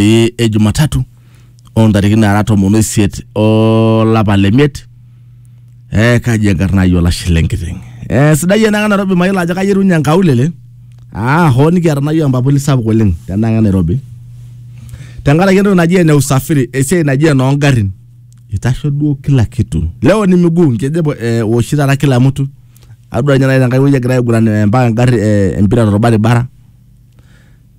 e, e Jumatatu oo ntarikini naara tomon oisiet olapa le miet eh, kaji enkarna ai olashe lenkiteng eh, sidai enaka Nairobi mayiolo ajo kayerunye enkaulele ah, hoo nikiata nayieu empapuli sapuk oleng tenaka Nairobi tenkaraki entoki naji ene usafiri esiai naji enoongarrin itasho duo kila kitu leo ni miguu nkejep eh, woshi taata kila mtu adua ninye nai tenkai wueji egira aiguran eh, mpaka engarri eh, empira torbaribara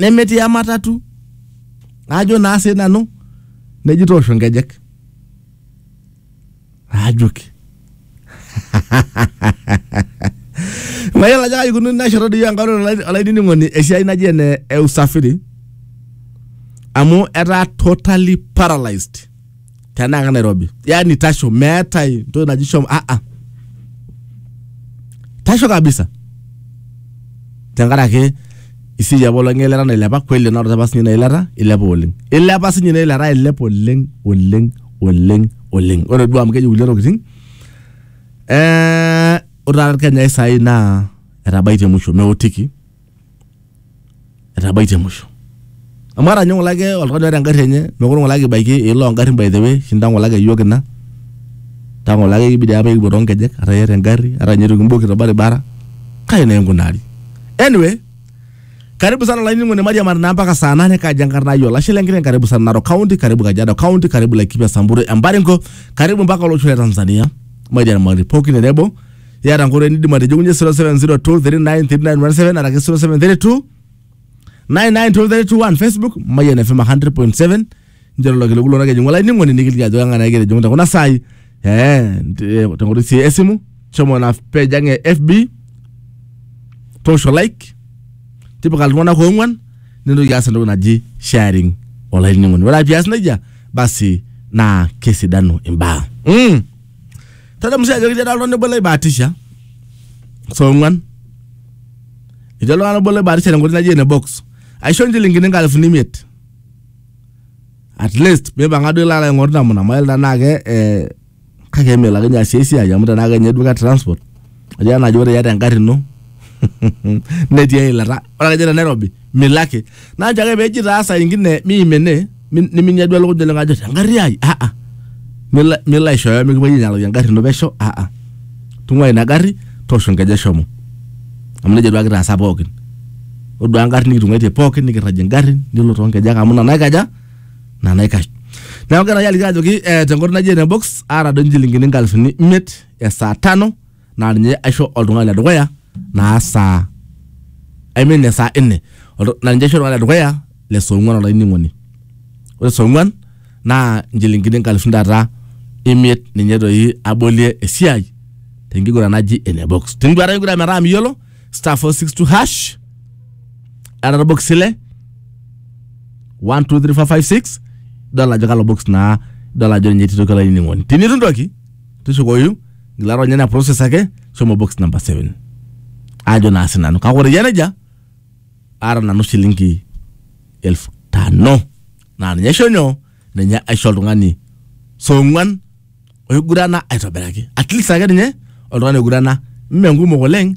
nemetii ematatu ajo naa sii nanu neji toosho nkejek ajoki mayiolo ajo kaji ikununo ina shoto doi enkalo olai- olainining'oni esiai naji ene e usafiri amu etaa totally paralyzed tenaa ka nairobi yani tasho meetae entoki naji shomo ah ah tasho kabisa tenkaraki isiai apa olong'i eilata nailepa kweli enarata apa sinye ina ilata ilepa oleng ilepa sinye ina ilata ailep oleng oleng oleng oleng ore duo amu keji kulie tokiting eh, ore taata irkenyai sai naa etabaitie musho meotiki etabaitie musho amu ata ninye ng'ole ake oltung'ani oata engarri enye mekure ng'ole ake ibaiki iloolo ongarrin by the way oshi intae ng'ole ake iyiook ina intae ng'ole ake kibidi apa ikipuo tonkejek ata iyata engarri ata ninye itu kimboki torbaribara kai naa inkunari anyway karibu sana olainining'oni mairiamari naa mpaka saa nane kaji enkarna ai olashe lenkiteng karibu sana Narok county karibu Kajiado county karibu Laikipia Samburu Embaringo karibu mpaka olosho le Tanzania mairiamari pookin tenebo iyata nkoitoi nidim atijing'unye 0702393917 araki 0732 99231 facebook mayian fm 100.7 njero lelo kiliku lona kejing'u olainining'oni nikiliki ajo kang'ae egira ajing'u tekuna saai eh, te- tenkoitoi sii esimu shomo na page ang e fb toosho like tipika iltung'anak oong'uan nintoki aas entoki naji sharing olainining'oni ore ake pias nejia basi naa kesidanu imbaa mm. Tadamu sii ajo ketii ada oltung'ani obo loibaatisha saa ong'uan. Etii oltung'ani obo loibaatisha tenkoitoi naji ene box. Aisho nchilingini inkalifuni imiet. At least mipang'a duo ilo alo aing'oru namna mayiolo tenaa ke eh, kake eme ilo ake ninye aasie esiai amu tenaa kenye duo ke transport. Ajo ena ajo ore iyata engarri ino netii eilata. Ore ake te Nairobi milaki. Naa nchoo ake pee eji taa saa ingine miim ene mi- niminya duo elukunya oleng ajo engarri ai ah ah. Milo milo aishooyo mikipuoi ainyalaki engarri ino pesho ah ah. Tung'uai ina garri toosho enkeju shomo. Amu neija duake kitaasa pookin. Ore duake engarri nikitung'aitie pookin nikirragie ingarrin nilo too nkejek amu ina naikaja ina naikash. Neeku kegirae aliki ajoki eh tenkoitoi naji ene box aata doi inchilingini inkalifuni imiet ya saa tano naa ninye aisho oltung'ani le dukuya naa saa I mean ya saa nne Oltu- naa ninye aisho oltung'ani le dukuya le saa ong'uan olainining'oni ore saa ong'uan naa inchilingini inkalifuni taata imiet ninye doi abolie esiai tenkiguran naji ene box tiniguata enkiguran metaa miyiolo star 462 hash era orbox ile 1 2 3 4 5 6 idol ajo kalo box naa idol ajo ninye etii toki olainining'oni tinitu ntoki tushukoyu ngila ronya ina process ake shomo box number 7 ajo naa sinanu kake ore yie nejia aata nanu shilingi elfu tano naa ninye aisho nyoo ninye aisho oltung'ani song'uan oigurana aitobiraki at least ake ninye oltung'ani oigurana mme nkumok oleng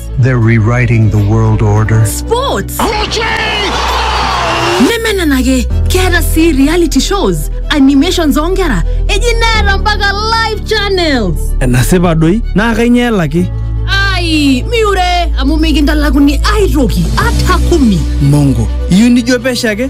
They're rewriting the world order. Sports. nemenenake keeta sii reality shows animations oonkera eji neeta mpaka live channels enasipa doi naa kainyoo elaki ai miure amu mikintalakuni aitoki ata kumi mongo iyieu nijo pesho ake